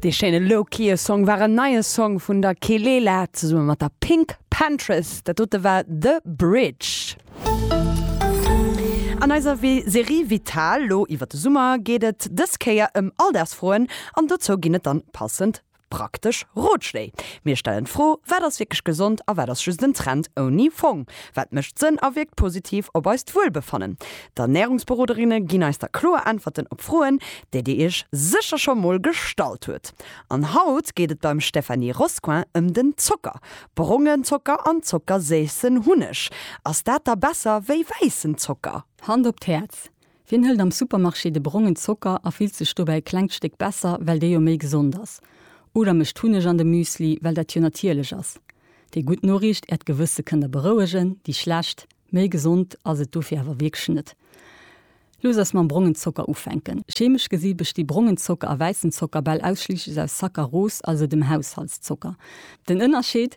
Dee schéine Low-Kië Song war en neie Song vun der Kelela zesumme mat der Pink Pantress. Dat dote war The Bridge. An eiser Serie Vital, lo iwwer de Summer, geet et dës Kéier ëm Alldagsfroen an dozou ginn et dann passend Praktesch Rotschléi. Mir stellen d'Fro, Wat ass wierklech gesond a wat ass just en Trend ouni Fong? Wat mécht Sënn a wierkt positiv op eist Wuelbefannen? D'Ernärungsberoderinne ginn eis da kloer Äntwerten op Froen, déi Dir Iech sécher scho mol gestallt hutt. An haut geet et beim Stéphanie Roscoin ëm den Zocker. Brongen Zocker an zockerséissen Hunneg, ass dat da besser wéi wäissen Zocker? Hand op d'Häerz, Wien hëlt am Supermarché de brongen Zocker a fillt sech dobäi e klengt Stéck besser, well dee jo méi gesond ass? Oder mécht Hunneg an de Müsli, well dat jo natierlech ass? Déi gutt Noriicht, Äert Gewësse kënnt Der berouegen. Déi schlecht, Méi gesond ass et dofir awer wierklech net. Looss eis mam brongen Zocker ufänken. Chemesch gesi besti brongen Zocker a wäissen Zocker bal ausschliisslech aus Saccaros, also dem Haushaltszocker. Den Ënnerscheed?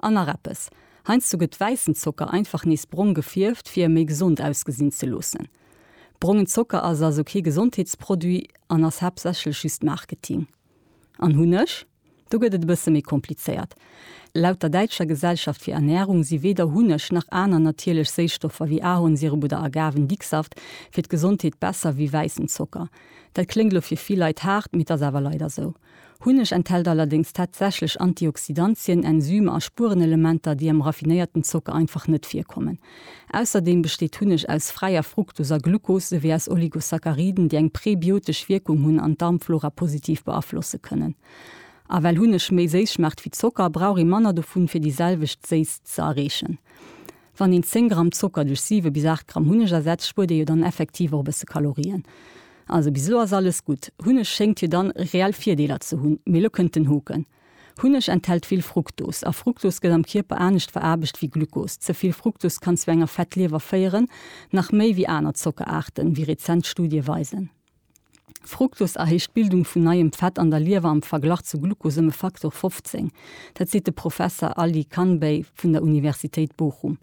An nach eppes, heiansdo gëtt wäissen Zocker einfach nees brong gefierft fir e méi gesond ausgesinn ze loossen. Brongen Zocker ass also kee Gesondheetsproduit an ass haaptsächlech just Marketing. An Hunneg? Do gëtt et e bësse méi komplizéiert. Laut der Däitscher Gesellschaft fir Ernährung si weder Hunneg nach aner natierlech Séisstoffer wéi Ahornsirup oder Agavendicksaft fir d'Gesondheet besser wéi wäissen Zocker. Dat kléngt lo fir vill Leit haart, mee 't ass awer leider sou. Hunneg enthält allerdéngs tatsächlech Antioxidantien, Enzymer a Spuerenelementer, déi am raffinéierten Zocker einfach net virkommen. Ausserdeem besteet Hunneg aus fräier Fruktos a Glucose souwéi aus Oligosacchariden, déi eng präbiotesch Wierkung hunn an d'Darmflora positiv beaflosse kënnen. A well Hunneg méi séiss schmaacht wéi Zocker, brauch ee manner dovun, fir déi selwecht Séisst ze erreechen. Wann een 10 Gramm Zocker duerch 7 bis 8 Gramm Hunneg ersetzt, spuert ee jo dann effektiv och e bësse Kalorien. Also bis elo ass alles gutt. Hunneg schéngt jo dann reell Virdeeler ze hunn. Mee elo kënnt den Hoken. Hunneg enthält vill Fruktos. A Fruktos gëtt am Kierper anescht veraarbecht wéi Glukos. Ze vill Fruktos kann zu enger Fettliewer féieren, nach méi wéi aner Zockeraarten, wéi rezent Studie weisen. Fructose erhéicht d'Bildung vun neiem Fett an der Liewer am Verglach zu Glucose ëm e Faktor 15. Dat seet de Professer Ali Khanbey vun der Universitéit Bochum.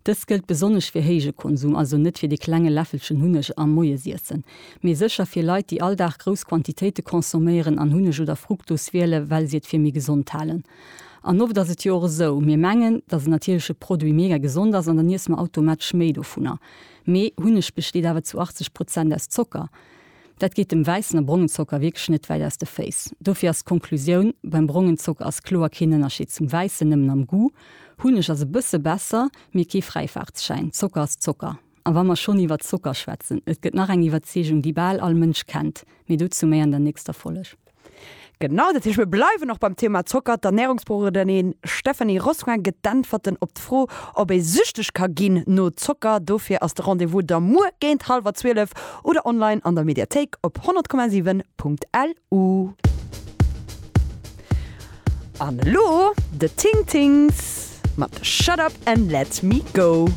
Dëst gëllt besonnesch fir héije Konsum, also net fir dee klenge Läffelchen Hunneg am Moiesiessen, mee sécher fir Leit, déi all Dag grouss Quantitéite consomméieren an Hunneg oder Fructose wiele well si et fir méi gesond halen. An oft ass et jo och esou, mir mengen, datt en natierleche Produit mega gesond ass an dann iesse mer automatesch méi dovunner. Mee Hunneg besteet awer zu 80 Prozent aus Zocker. Dat geet dem wäissen a brongen Zocker wierklech net wäit aus de Féiss. Dofir ass d'Konklusioun, Beim brongen Zocker ass kloer keen Ënnerscheed zum wäissen, nëmmen am Goût. Hunneg ass e bësse besser, mee kee Fräifaartsschäin. Zocker ass Zocker. A wa mer schonn iwwert Zocker schwätzen, et gëtt nach eng Iwwerzeegung, déi bal all Mënsch kennt. Mee dozou méi an der nächster Folg. Genau, dat heescht mir bleiwen och beim Thema Zocker. D'Ernärungsberoderin Stéphanie Rosquin gëtt d'Äntwerten op d'Fro, ob ee süchteg ka ginn no Zocker. Dofir ass de Rendez-vous da muer géint hallwer zwielef oder online an der Mediathéik op 100,7.lu. An elo The Ting Tings mat Shut Up and Let Me Go.